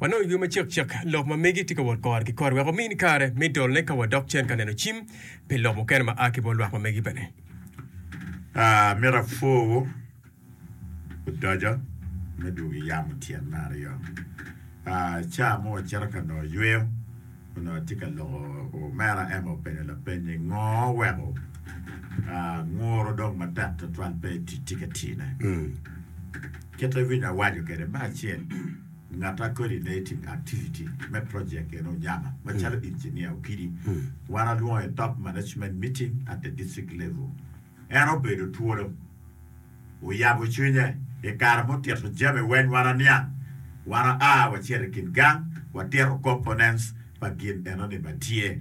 Wanongo i yo macekcek lok ma megi tye ka wot kore ki kore wek omini kare me dolone ka wadok cen ka neno cim pi lok mukene ma a ki bot lwak ma megi bene. Myero apwor odoco me dwogo yamo tyen me aryo. Ca mo wacito ka nongo yweyo. Onongo atye ka loko omera Emma openyo lapenye ngo oweko nguro dong matek twatwal pe eti tye ka tine. Kit ma winyo awaco kwede me acel ngat a coordinating activity me project eni onyama macalo engineer okidi wan alwongo i top management meeting at the district level En obedo twolo, oyabo cwinye i kare mutito jami weny wa na niang. Wan wa a wa cito i kin gang wa tito components pa gin eno ni ma tye.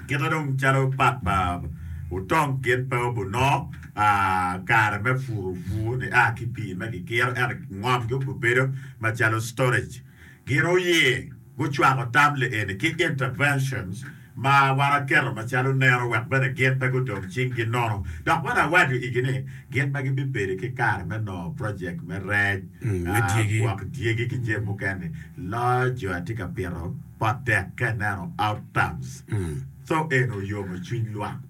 Kite dong calo part pa otong gin pe obuno a kare me puro pur ni a ki pii me ki kiro ento ngom gi obubedo ma calo storage. Gin oye gucwako tam li eni ki interventions ma wan aketo macalo neno wek bene gin pe gudong cing gi nono. Dok bene awaco igi ni gin pe gibibedi ki kare me nongo project me rec, gwok dyegi ki jami mukene-ni. Loyo jo atye ka pito pot dek ka ineno outcomes. Tho eni oyomo cwiny lwak.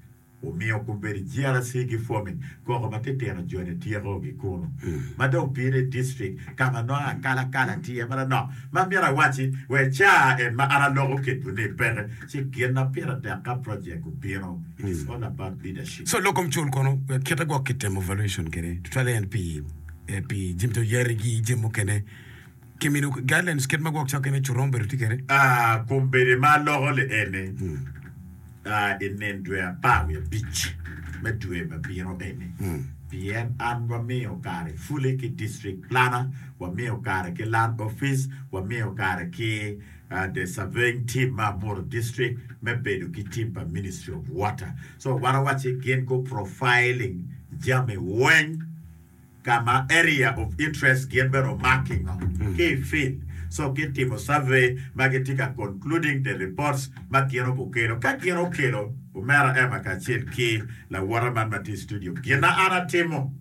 Omiyo obedo GRC ki Fomit koko ma titino jone tyeko gi kunu ma dong opire i district ka ma nongo akalakala tye ma lanok ma myero awacci wee caa en ma an aloko ketwu ni peke ci gin ma pire tek ka project obino it is all about leadership. So lokom cul kono kite gwok kitemo valuation kede tutwale en pi jemto yari gi jemi mukene. Kiminiu guidelines kit ma gwok cokke me cuto ma obedo tye kwede. Aa, kombedde ma aloko li ene, aa, i nen dwe apar wiye abic me dwe ma bino eni, pien an wamiyo kare fuli ki district planner, wamiyo kare ki land office, wamiyo kare ki, aa, the surveying team me Amuru district me bedo ki team pa ministry of water. So wan awacci gin gu profiling jami weng. ka ma Area of Interest gin bene omak ki ngo ki i field so ki timo survey ma gi tye ka concluding the reports ma gin o gukelo ka gin o kelo omera Emma kacel ki lawota man ma tye i studio gin ma an a timo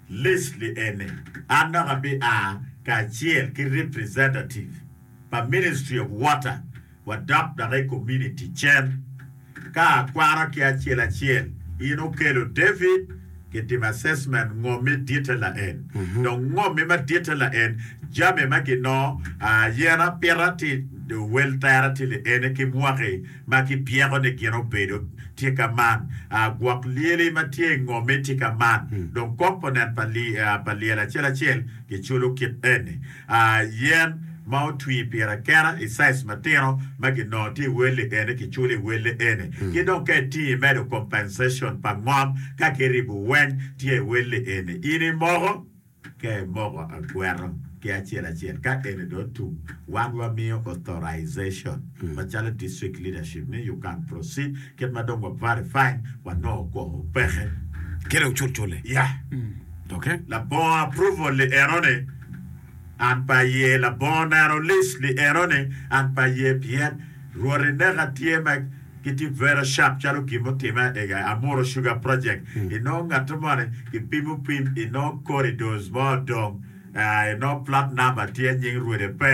list li eni an dok a bi a kacel ki representative pa Ministry of Water, wadok dok i kominiti cen ka akwara ki acel acel in okelo David kitim assessment ngommi ditte laen dong ngommi ma ditte laen jami ma ginongo aa yen apita ti owel tera ti liene ki mwaki ma ki pyeko ni gin obedo ti ka man aa gwok lyeli ma tye i ngommi ti ka man dong kop onen pa lyel acel acel giculo kit eni Yen ma otwi pire akena i size matino ma ginongo tye i wel-li eni kiculo i wel-le eni. Ki dong ka itingo imedo compensation pa ngom ka ki ribu weny tye i wel-li eni. In imoko? Ka imoko agweto ki acel acel ka eni dong otum wan wamiyo authorization macalo district leadership ni you can proceed kit ma dong wa verifying wanongo kwoko peke. Kit dong cul cul-le. Yeah. Okay. Labongo approval-li eno ni. An pe aye labongo neno list ni eno ni an pe aye pien Rwot ineka tye ma ki tye very sharp calo gin mutime ega Amuro sugar project inongo ngate moni ki pimo piny inongo corridors mo odong aa inongo plat number tye nying rwode pe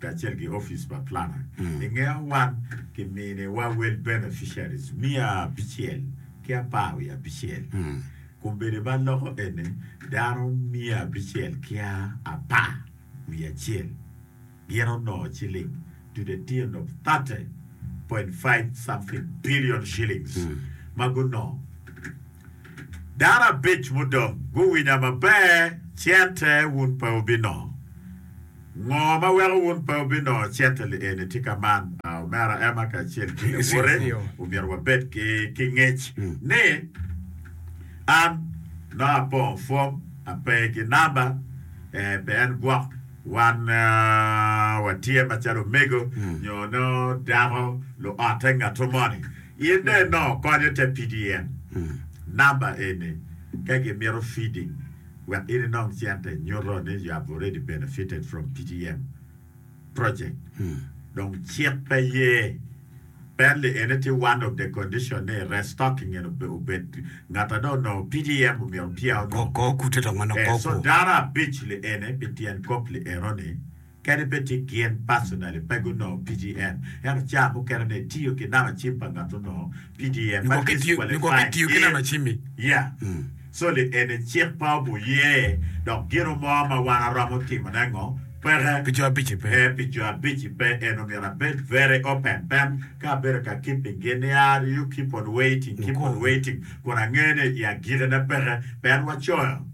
kacel ki opic pa plana i nge wan ki mini wa wel beneficiaries miya abicel ki apar wiye abicel kombeddi ma loko eni dano miya abicel ki apar wiye acel gin onongo ciling to the tune of 30.5 something billion shillings ma gunongo Dano abic mudong guwinya maber, cente wun pe wubinongo. Ngo ma weko wun pe wubinongo cente lieni? Tika man omera Emma kacel ki lawote omyero wabed ki ngec ni, An nongo apongo fom, ape ki namba? Ee, pien gwok wan watye macalo omego nyo nongo dako luotte ngatu moni. In dong inongo konyo te pidi en namba eni ka gimito feeding wek in inong cente nyuto ni you have already benefited from PDM project dong cik pe ye Penley eni tye one of the condition ni restocking eni obed ngat a dong onongo PDM omyero pia onongo. Kor kute dong manongo kor so kor. data abic li eni pi tyen kop li enoni. Kadi bed ci gin pacinali pe gunongo PGN, ento cawa mukene ne itiyo ki nama cim pa ngat onongo PGN ma disqualify gin. Yeah. So li eni cik pa obuye dok gino mo ma wan aromo timone ngo peke Pi co abici pe. eh pi co abici pe en omyero abed very open pen ka abedo ka keeping gi ni ah you keep on waiting keep on waiting kun ange ni i agikine peke pen wacoyo.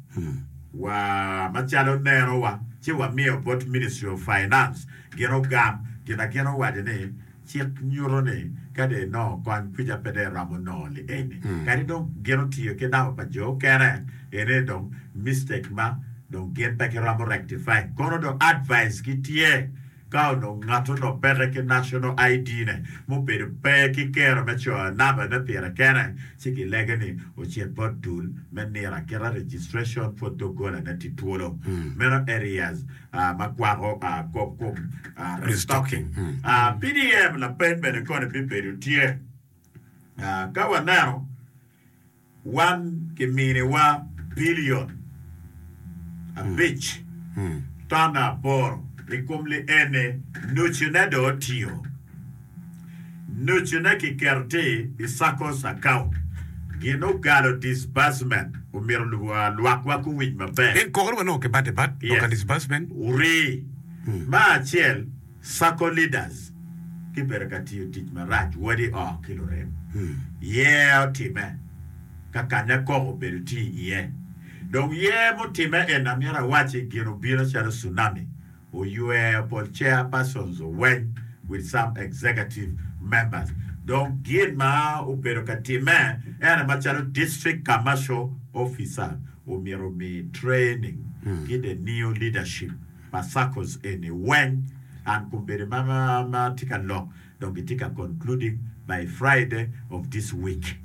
wa macalo neno wa ci wa miyo bot Ministry of Finance gin ogam gin a gin owaco ni cik nyuto ni ka dong inongo kony kwica pe dong iromo nongo li eni kadi dong gin otiyo ki namba pa jo okene eni ni dong mistake ma dong gin pe giromo rectifying kono dong advice gi tye Ka onongo ngat onongo peke ki National ID ne, mubedo pe ki kero me coyo namba ne pire kene, ci ki lege ni ocit bot dul me nira kite registration for dogola ne ti twolo. Meno areas ma kwako kop kom restocking. PDM lapeny bene koni bibedo tye ka waneno. Wan kiminiwa bilion abic ton aboro i kom lienne, nucune dong otiyo. Nucune kiketo tye i SACCO's account. Gin ogalo, disbursement, omyero lwakwa guwiny maber. Pien kokere wanongo kibate bat, dok ka disbursement. Orii. Ma acel. Circle Leaders ki bedo ka tiyo tic marac wadi oo ki lurem yer otime ka kanya koko obedo tye iye. Dong yer mutime en amyero awaci gin obino calo cunami oywer pol chairpersons oweng with some executive members dong gin ma obedo ka time ene macalo district commercial officers omyero omi training ki the new leadership. Pa circles eni weng and combedi ma ma tye ka lok dong gitye ka concluding by Friday of this week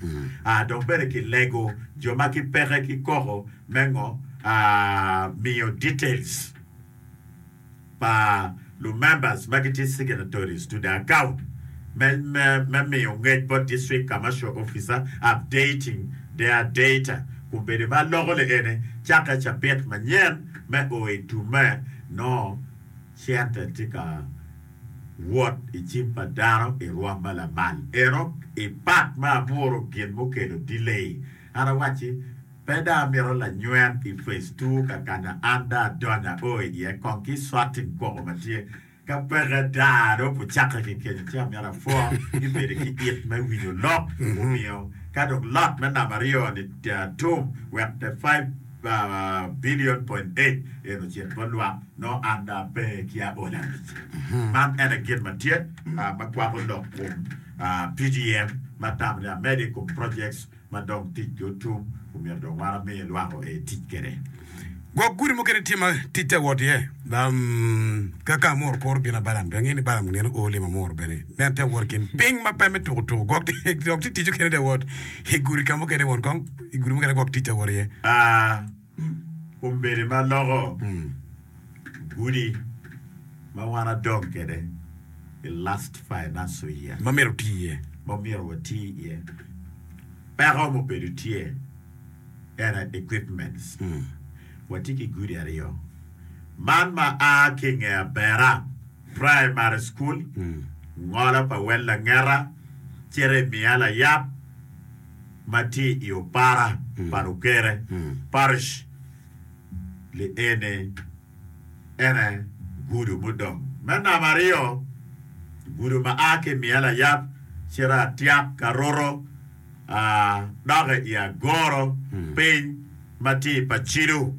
ah dong bene ki lego jo ma ki peke ki koko me ngo ah miyo details pa lu members ma gitye signatories to the account me me me miyo ngec bot district commercial officer updating their data combedi ma loko le ene cake cabit manyen Me o i tumme, nongo cente tye ka wot i cim pa dano i rwom ma lamal. Ento i Pat me Aboro gin mukelo dilei. An awacci, Pe dong amito lanywen i Phase Two ka ka na an dong adonyo ao iye kong ki swatting kwoko ma tye. Ka peke daa dong pu cakke ki kenyo ci amyero apwor ni bedo ki it me winyo lok omiyo ka dong lot me namba aryo ni tum wek the five billion point eight en ocit bot lwak nongo an dong ape ki aol abic. Man en aye gin ma tye ma kwako lok kum PGM ma tamo ni amede i kum projects ma dong tic ki otum omyero dong wan amiye lwak o ee tic kede. Gwok gudi mukene tye ma tic te wot iye ka ka Amor kuro bino a Balam, pe angeyo ni Balam nino oo limo Amor bene, nen te wot ikin piny ma pe me tuku tuku gwok tye ticce kene te wot igudi ka mukene won kong igudi mukene gwok tic te wot iye. Kombeddi ma loko gudi ma wan adong kwede i last financial year. Ma myero oti iye. Ma myero wati iye. Peko mubedo tye en aye equipments. Watye ki gudi aryo. Man ma a ki i nge Abera Primary School, ngolo pa wel Langeta, cito i Miya Layab. ma tye i opara pa lukere, parish, li eni ene gudo mudong me namba aryo, gudo ma a ki i miya layab cito atyak ka Roro, a doki i Agoro piny ma tye i Pacido,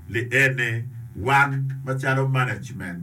li eni wan macalo management,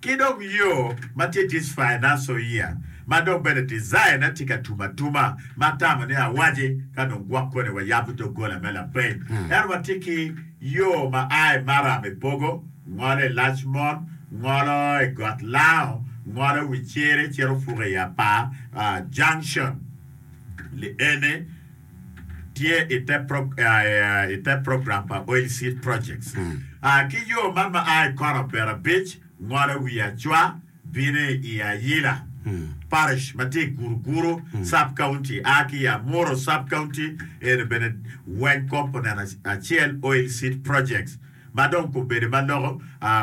Ki dong yo ma tye tic Fainasoia ma dong bene design aye tye ka tum atuma ma atamo ni awaci ka dong gwok koni wayabo doggola me lapeny. Ento watye ki yo ma a i maram i Pogo, ngolo i Lacmon, ngolo i Got Lango, ngolo wi Cere cito ofuko i Apar Junction. Li ene. tye i te program pa Oil Seed Projects ki yo man ma a i kor abirabic ngolo wi acwa bino i Ayila Parish ma tye i Guruguru Sub County a ki i Amuru Sub County. Eno bene weng kop oneno acel Oil Seed Projects ma dong kobedo ma loko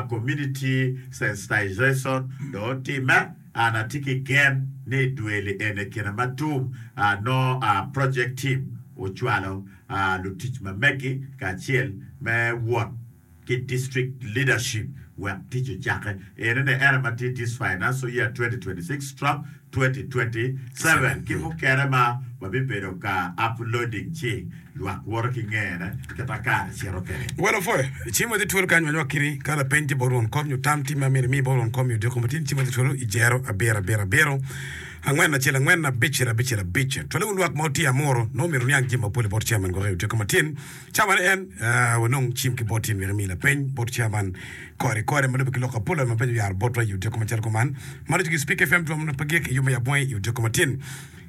Community Sensitization dong otimme. An atye ki gen ni i dwe li eni kine ma tum a nongo a Project Team ocwalo a lutic ma megi kacel me wot ki District Leadership wek tic ocake eni ni ene ma tye This Financial Year 2026 stroke 2027 ki mukene ma wabibedo ka uploading ci Lwak woto ki ngene, kit ma kare cito kwede. Welo pwe. I cim ma tye twolo kany ma nywak kiri, ka lapeny tye bot won kom nyo tam tim ma myero imi bot won kom nyo odiko matidi, cim ma tye twolo i jero abiro abiro abiro angwen acel angwen abicel abicel abic. Twale wun lwak ma wutye amuru, nongo myero wuniang jami mapol i bot chairman gwok i odiko matin. Chairman ni en, aa, wanong cim ki bot in myero imi lapeny bot chairman kore kore ma lube ki lok apol, aa, ma peny oyaro botwa i odiko macalo kuman. Mano ducu ki Speak FM twom nongo pe gik i yub me yab wangi i odiko matin.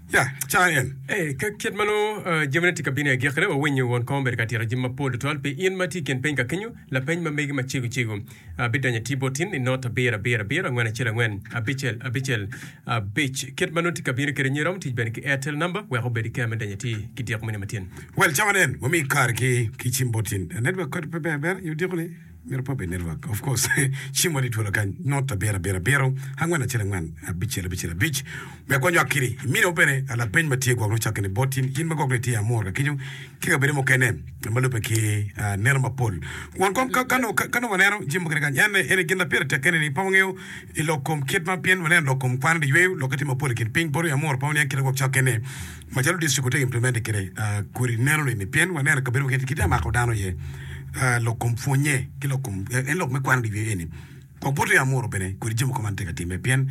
Ya, ca en. Ee, ka kit ma nongo jamine tye ka bino i agikkine, wawinyo won kom obedo ka tito jami mapol tutwal pi in ma tye i kin peny ka kenyo. Lapeny ma megi ma cego cego abidonyo atir bot in i not abiro abiro abiro angwen acel angwen abicel abicel abic. Kit ma nongo tye ka bino kede nyo irom tic bene ki Airtel number wek obed iker me donyo atir ki diko moni matyen. Wel, cawa nen, wami kare ki ki cim bot in. Network kodi pe ber ber i odiko ni. Myero pe obed network of course cim wadi twolo kany not abiro abiro abiro angwen acel angwen abicel abicel abic me akwa nywak kiri iminiwa bene lapeny ma tye gwok nongo cakke ni bot in in ma gwok ni itye amor ka kenyo ki kabedo mukene ma lube ki ah, neno mapol kun kong ka ka nongo- ka nongo waneno jami mukene kany en en gin ma pire tek kene ni pe wangeyo i lok kom kit ma pien waneno lok kom kwan liyweyo lok ki tim mapol i kin piny bot wiye amor pe waniang kite gwok cakke ni Macalo distrik wutegi implementi kede kodi neno ni ni pien waneno kabedo keken kite amako dano iye lok kom pwonye ki lok kom en lok me kwano diwiye eni kong poti amuro bene kodi jami mogo man teka time pien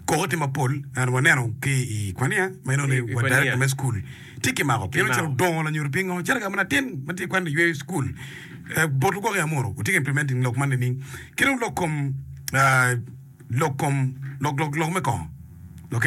koko tye mapol and waneno ki i kwania ma inongo ni wa director me school tye ki mako pien ocito dongo lanyut pingo calo kama latin ma tye kwano iyweyo school bot lugwok i amuro wutye ka implementing lok man nining kidong lok kom lok kom lok lok lok me kongo ok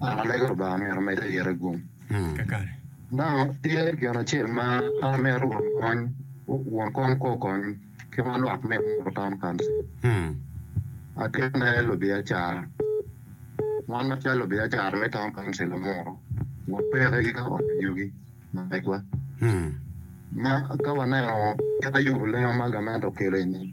Ngat ma lego Lubanga myero omed i yite gum. Nano tye gin acel ma an amito won kony won kony kwo okony ki ma lwak me Muru Town Council. Atye me lubiacara. Wan macalo lubiacara me Town Council me Muru wapeke ki ka ot yugi ma megwa. Ma ka waneno kit ma yubu lengo ma gamente okelo-ni,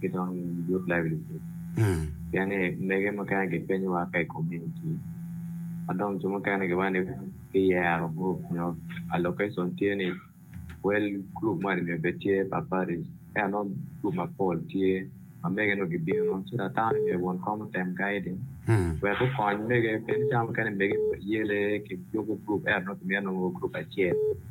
ki dong youth livelihood pien ni mege mukene gipenyowa ka i community ma dong jo mukene giwaco ni ki yero group nyo allocation tye ni wel group moni nyo pe tye pa party ento nongo group mapol tye ma mege nongo gibino so that dano nongo myero won kong otem guiding wek gukony mege pien cawa mukene mege oyele ki yubo group ento nongo kimito nongo group acel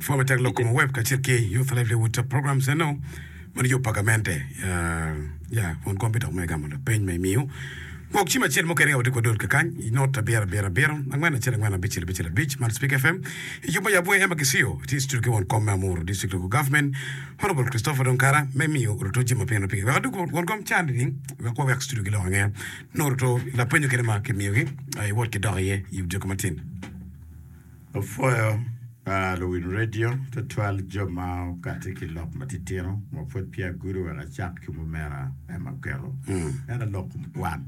Pwony matek lok kome web kacel ki Youth Livelihood Program Center ma nongo pagamente ya kun kombe dok me gamo lapeny ma imiyo. Gwok cim acel mo kene ka watye kwadol kakany i not abiro abiro abiro angwen acel angwen abicel abicel abic man Speak FM i jubbe Yabwe Emma Kisiyo tye i studio ki won kom me Amuru District Local Government Honourable Christopher Donkara me miyo Ruto jami ma piny nongo pigi wek adwogi won kom can nining wek wawek studio giloko ange nongo Ruto lapenyo kene ma kimiyogi iwot ki dok iye i odyoki matin. Wapwoyo luwiny redio, tutwal jo ma okati ki lok matitino ma pwod peya gudo wek acak ki mumera me maketo. Ento lok kom kwan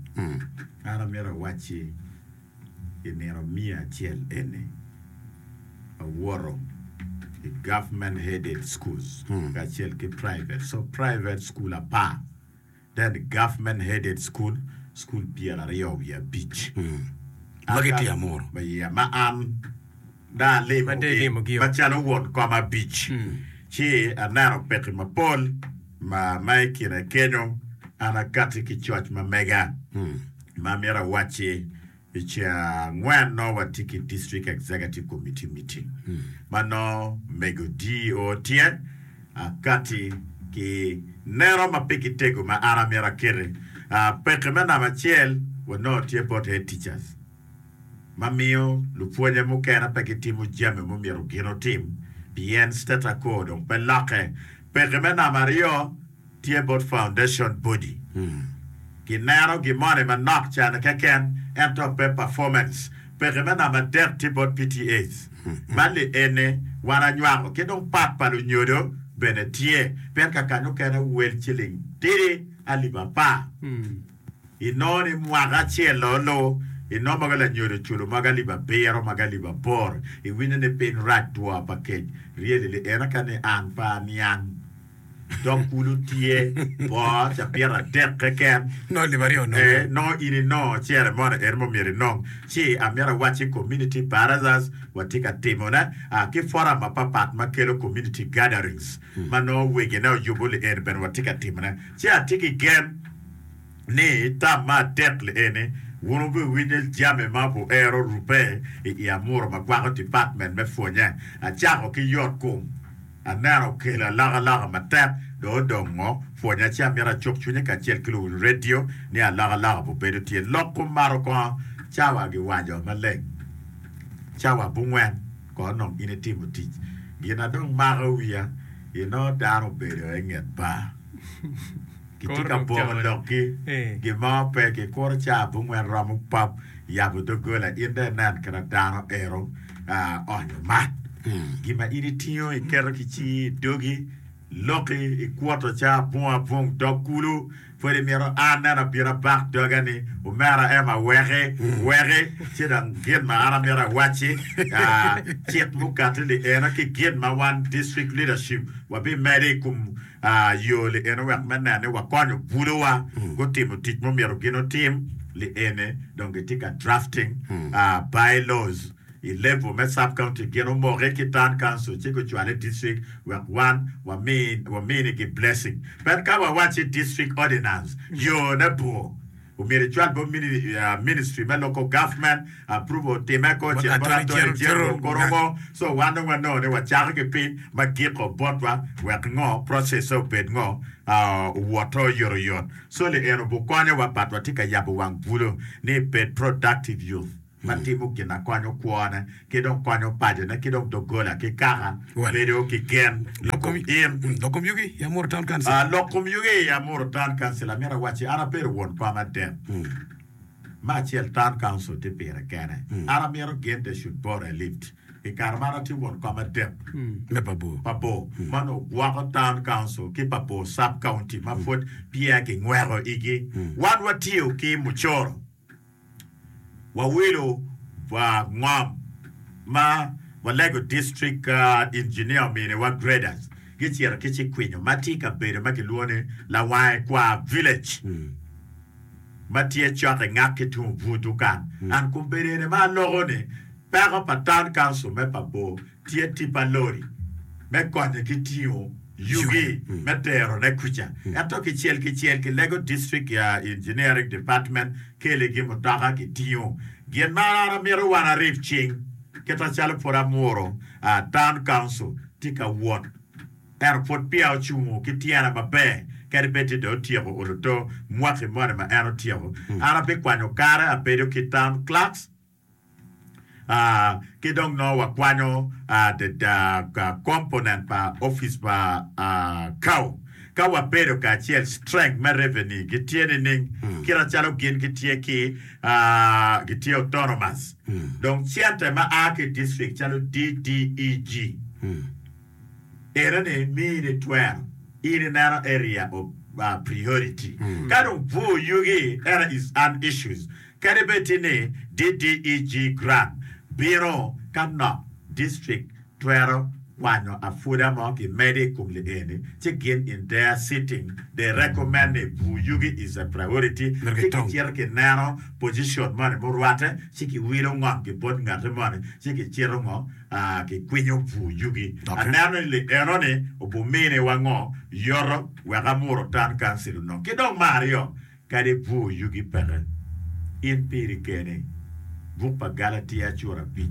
ma an amito awacci i nino miya acel eni, awoto i government headed schools kacel ki private so private school apar. Then government headed school, school pyera aryo wiye abic. Ma ki tye amuru. Ma yeah, ma an dong alimo Ma dong ilimo gi-o. macalo won kom abic. Ci aneno pekki mapol ma ma i kine kenyo an akati ki coc ma mega ma amito awacci. I ceng angwen nongo watye ki District Executive Committee meeting ma nongo mego DEO tye akati ki neno ma pe gitego ma an amyero akete. Peke me namba acel wanongo tye bot Head Teachers ma miyo lupwonye mukene pe gitimo jami mumyero gin otim pien State Acor dong pe lokke. Peke me namba aryo, Tye bot foundation body. Ki neno gi moni manok can keken ento pe performance. Peke me namba adek tye bot PTAs. Bali ene wan anywako ki dong part pa lunyodo bene tye pien ka kany mukene wel ciling tidi alip apar. I nongo ni mwaka acel o lu i nongo mogo lanyodo oculo mogo alip abiro mogo alip aboro. I winyo ni piny rac two pa kec really li ene ka ni an pe aniang. dok kulu tye bor cabit adek keken, Nongo lib aryo onongo. ee, nongo in inongo ceremony eno ma myero inong. Ci amito awacci community barazas watye ka timone aa ki forum mapapat ma kelo community gatherings ma nongo wegine oyubo li eni bene watye ka timone. Ci atye ki gen ni tam me adek li eni wun wubiwinyo jami ma wero rubbe i i amuru ma kwako department me pwonye. Acako ki yot kom. Aneno kelo alakalaka matek, dong odong ngo? Pwonya ci amito acuk cwinye kacel ki luwiny redio ni alakalaka pu bedo tye. Lok kum mato kongo cawa gi waco maleng. Cawa bungwen kono onong in itimo tic. Gina dong mako wiya, inongo dano obedo enget bar. Gitye ka boko lokgi gin mo pe ki kuro caa abongwen romo pap yabo dogola in dong inen kena dano ero onyo mat gin ma in itingo iketo ki cingi idogi loki ikwoto caa abong abong dok kulu pwod imito an neno abino abak doga ni omera Emma weki weki ci dong gin ma an amito awaci cik mukati ni eno ki gin ma wan district leadership wabi medo ikom Yo liene wek me neno ni wakonyo bulowa gutimo tic ma omyero gin otim liene dong gitye ka drafting bylaws i level me sub county gin omoke ki town council ci gucwale district wek wan waminigi blessing. But ka wawacci district ordinance yo ne bor. Omyero icwal bot Ministry me Local Government, approval otime ko cito bot Attorney General kor ongo, so wan dong wanongo ni wacako ki piny ma giko botwa wek ngo, process-se obed ngo, owoto oyotoyot. Solly eno obukonyowa but watye ka yabo wang bulo ni bed productive youth. ma timo gin ma konyo kwone ki dong konyo pacone ki dong doggola ki kaka bedo ki gen i kom in. Lok kom yugi i Amuru Town Council. Lok kom yugi i Amuru Town Council, Amito wacci an abedo won kom adek. Me acel Town Council tye pire kene. An amito gin they should both relieved. I kare ma an atye won kom adek me pa bor ma onongo gwoko Town Council ki pa bor Sub County ma pwod peya ki nyweko igi, wan watiyo ki mucoro. Wawilo wa ngom ma walego District Engineer ominiwa graders gicito ki Cikwinyo ma tye i kabedo ma kilwongo ni Lawange Kwar Village ma tye cok i ngak ki tung bur dukan. An kombedene ma aloko ni peko pa Town Council me Pabor Tye tip pa lori me konye ki tingo yugi me terone kuca. Ento kicel kicel ki lego district engineering department keli gi mutoka ki tingo gin ma an amito wan arip cing kita calo pud amuro town council tye ka wot ento pud peya ocungo ki tyene maber kadi bed tye dong otyeko oluto mwaki moni ma en otyeko an abikwanyo kare abedo ki town clerks Ki dong nongo wakwanyo adada component pa office pa Cow ka wabedo kacel. Strength me revenue gi tye nining? Kit acalo gin gi tye ki gi tye autonomous dong center ma aa ki district calo DDEG. Erane miyi ni twero in ineno area of priority. Ka dong pwo yugi era is an issues kadi bed ti ni DDEG grant bino ka nok district twero kwanyo apuda mo ki mede i kom li eni ci gin in their sitting they recommend ni pwo yugi is a priority ci ki cito ki neno position moni murwate ci ki wilo ngom ki bot ngate moni ci ki cito ngo kikwinyo pur yugi. Aneno ni li enoni obiminiwa ngo? Yoto wek amur otan kancil onongo. Ki dong me aryo, kadi pur yugi peke, in piri keni, buk pa Galatia cura abic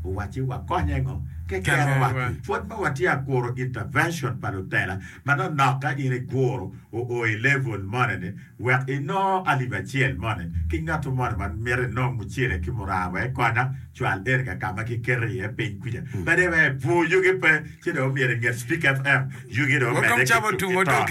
owacci wakonye ngo? Keken owacci, pwod ma watye ka kuro intervention pa lutela, manonok ka in iguro oo i level moni ni, Wek inong alip acel moni ki ngatto moni ma mito inong mucele ki muraa wek ikonya, cwal Erica ka ma kiketo iye piny kwija. Pede wek epwoo yugi pe, ci dong omyero inget Spik FM yugi dong omedde ki tuk ki tona.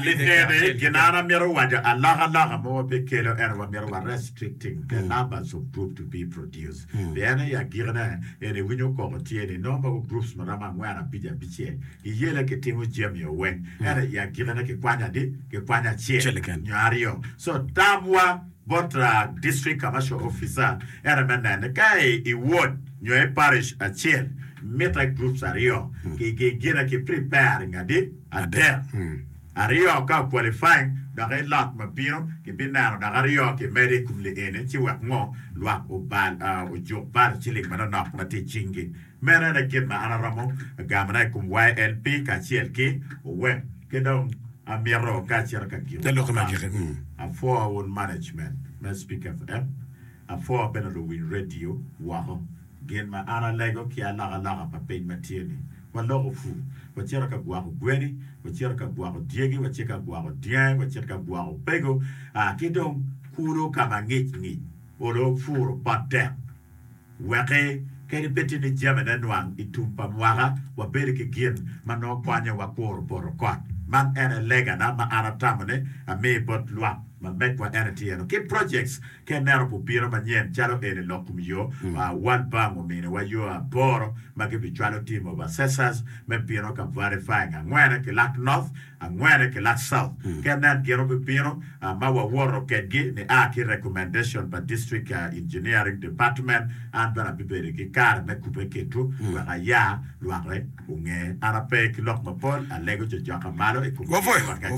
Litere ginana mito waco alokaloka mo ma pe kelo ento wamito wa restricting the numbers of group to be produced pien aye agikine en iwinyo koko tye ni nongo magu groups ma romo angwen abic abicel I yela kitimo jami oweng, ento i agikine kikwanyo adi? Kikwanyo acel nyo aryo. So, tamwa bot District Commercial Officer ene me nene ka i ward nyo i parish acel mitte groups aryo kigine ki preparing adi? Adek. Aryo ka o qualifying dok i lot ma bino kibineno dok aryo kimedo i kom lieni ci wek ngo? Lwak ojuk bal ciling manonok ma tye i cingi. Meno ene kit ma an aromo gamona i kom YLP kacel ki owek ki dong amito ka acito ka gin Te lok ma gik i. Apwoo wun management me Speak FM, apwoo bene luwiny radio woko. Gin ma an alego ki alakalaka pa piny ma tye ni, waloko pur, wacito ka gwako gweni, wacito ka gwako dyegi, wacit ka gwako dyangi, wacit ka gwako pego, aa ki dong kulu ka ma ngic ngic, olo puro pot tek. Weke kadi pe tye ni jami ne nwang i tum pa mwaka, wabedo ki gin ma nongo konyo wakuro poto kot. Man ene legana ma an atamo ni amii bot lwak ma megwa ene tye eno ki projects ki enero pu bino manyen calo eni lok kum yo, World Bank omini wa yo aboro ma gi bi cwalo team of assessors me bino ka verifying angwene ki lak North, angwene ki Lach South ki anen gin obibino ma wawoto kedgi ni a ki recommendation pa District Engineering Department an bene abibedo ki kare me kube kitwu wek aya lwakre onge. An ape ki lok mapol alego cocoka malo i kom gin ma gacito.